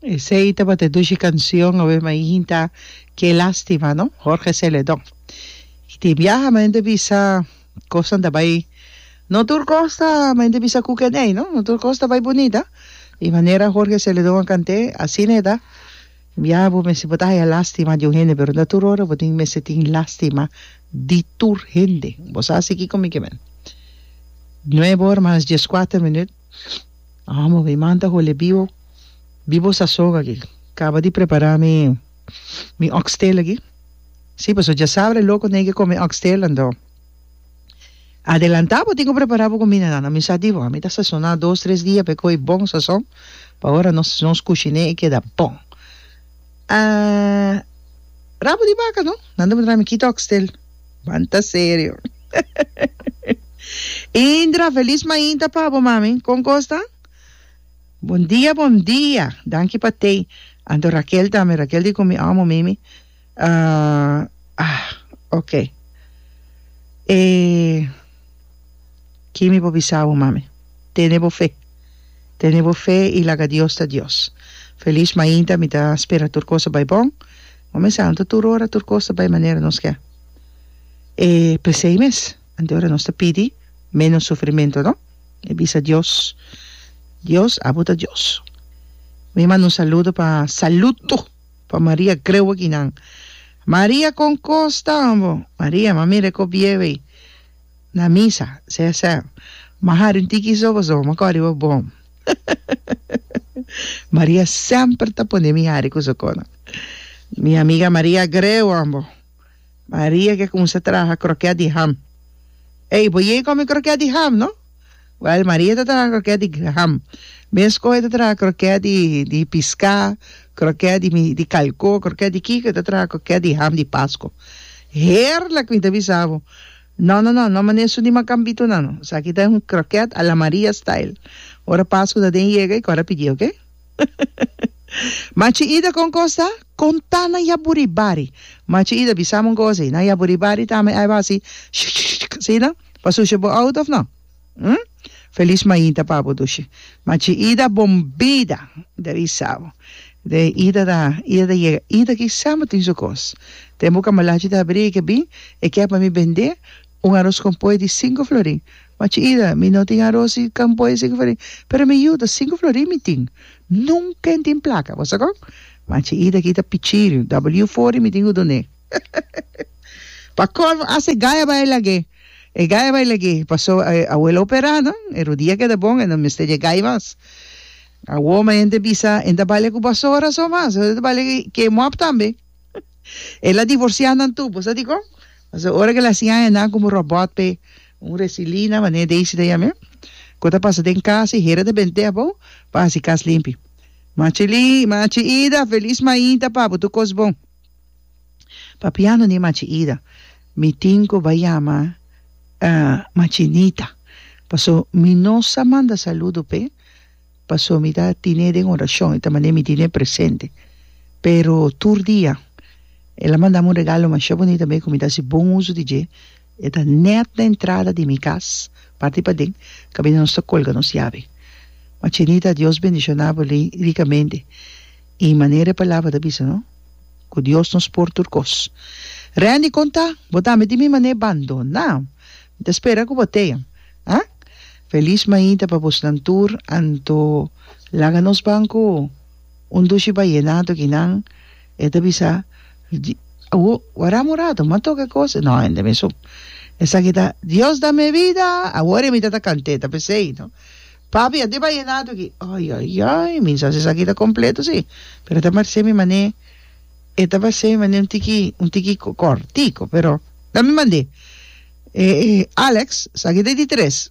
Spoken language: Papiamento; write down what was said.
Esey tabata e dushi cancion awe ma e hinta Qué lastima no, Jorge Celedon. Y tin biaha men ta bisa cosnan ta bay, no tur cos ta men ta bisa cu keney no, no tur cos ta bay bunita. Y manera Jorge Celedon a cant'e asina e ta, biaha bo mester bo ta haya lastima di un hende pero no tur ora bo tin mester tin lastima di tur hende. Bo sa a sigui con mi ke men. Nuebe ora mas dieskuater minuut. Amo, mi man ta hole bibo, bibo sasog aki. Caba di prepara mi mi oxtail aki. Si, pasobra djasabra e loco tin ki come oxtail anto adelanta bo tin cu prepara bo comida nan. Mi sa di bo, mi ta sasona dos, tres dia pa e coge bon sazon, pa ora nos nos cushine e keda bon. Ah, rabo di baca no? Nan ta por traha mi kit oxtel. Banta serio. Indra, feliz mainta pa bo mami. Con cos ta? Bon dia, bon dia. Danki pa thee. Anto Raquel tambe. Raquel di con mi amo Mimi. Ah, ah, ok. Eh, ki mi por bisa bo mami? Tene bo fe. Tene bo fe i laga Dios ta Dios. Feliz mainta mi ta spera tur cos ta bay bon. Bo mester anta tur ora tur cos ta bay manera nos ke. E pesey mes. Anto ora nos ta pidi menos sufrimento no. Mi bisa Dios Dios abo ta Dios. Mi manda un saludo pa saludo pa Maria grewe kinan. Maria con cos tambo. Maria mami recobiewey. Na misa, CSM. Maha den tiki so pasobra mi a kòrda riba bon. Maria semper ta pone mi hari ku su kona. Mi amiga Maria Greu an bo. Maria ke kuminsá traha krokèt di ham. Ey, bo yega kòm mi krokèt di ham, no? Wèl, Maria ta traha krokèt di Graham. Mes kò e ta traha krokèt di di piská, krokèt di mi di kalkó, krokèt di kiko e ta traha krokèt di ham di Pasko. Heerlèk! Mi ta bisa bo, No, no, no, no manda esun di Macambito nan. Esaki ta un krokèt a la Maria style. Ora Pasko ta den yega e kòrda pidi, oke? Machi Ida kon kos ta? Kontá na Yaburibari. Machi Ida, Bisami un kos ei. Na Yaburibari tambe aiba hasi shikshikshik, asina? Pa sushi bo out of no? Hm? Feliz mainta pa bo dushi. Ma chi Ida bon bida de avisa bo. De Ida ta Ida ta yega. Ida kisa bo tin su kos. Den bo kamalachi ta habri eke bin e kia pa mi bende un aros kon poi di sinku florin. Ma chi Ida mi no tin aros di kon poi di sinku florin. Pero mi yuta sinku florin mi tin. Nunka en tin plaka. Bo sa kon? Ma chi Ida kita pichiriu. W four i mi tin ku dun'e. Pa colmo hasta e gaya bay lag'é, e gaya bay lag'é, paso e abuelo a opera nan, e rodia keda bon, e no mester dje gaya mas. Awor mi hende a bisa, e no ta balia cu basora so mas, e ta balia ke mop tambe. El'a divorcia nan tur, bo sa dicon? Paso ora cu el a hacia aña nan como robot p'e un resilina manera Daisy ta yam'é, cu ta pasa den cas, e hera ta bende def bo pa haci cas limpi. Machi Lin, machi Ida, feliz mainta pa bo tur cos bon. Papiando di Machi Ida, mi tin ku bai yama Machi Nita, paso mi no sa manda saludo p'e, paso mi ta tine den orashon, e ta manera mi tine presente, pero tur dia el a mandami un regalo masha bunita mi ku mi ta hasi bon uso di dje. E ta nèt na entrada di mi kas, parti paden, kaminda nos ta kolga nos yabe. Ma Chinita, Dios bendishoná bo rikamente. I manera e palabra ta bisa no, ku Dios nos por tur kos. Randy, kon ta? Bo tambe tin mi manera bandoná? Mi ta spera ku bo teya. A? Felis mainta pa bosnan tur, anto laga nos ban ku un dushi bayená tokinan. E ta bisa, Awo, wardá morá, tuma tok e kos. No, hende mesun. Esaki ta, Dios dame e bida, awor e mita ta kanté, ta p'esei, no? Papi, a deba yenatu aki. Ai, ai, ai, mi sa si esaki ta kompleto así, pero e ta parsé mi man'é, e ta parsé mi man'é un tiki, un tiki kòrtiku, pero dame mand'é. E, e, Alex, esaki ta e di tres.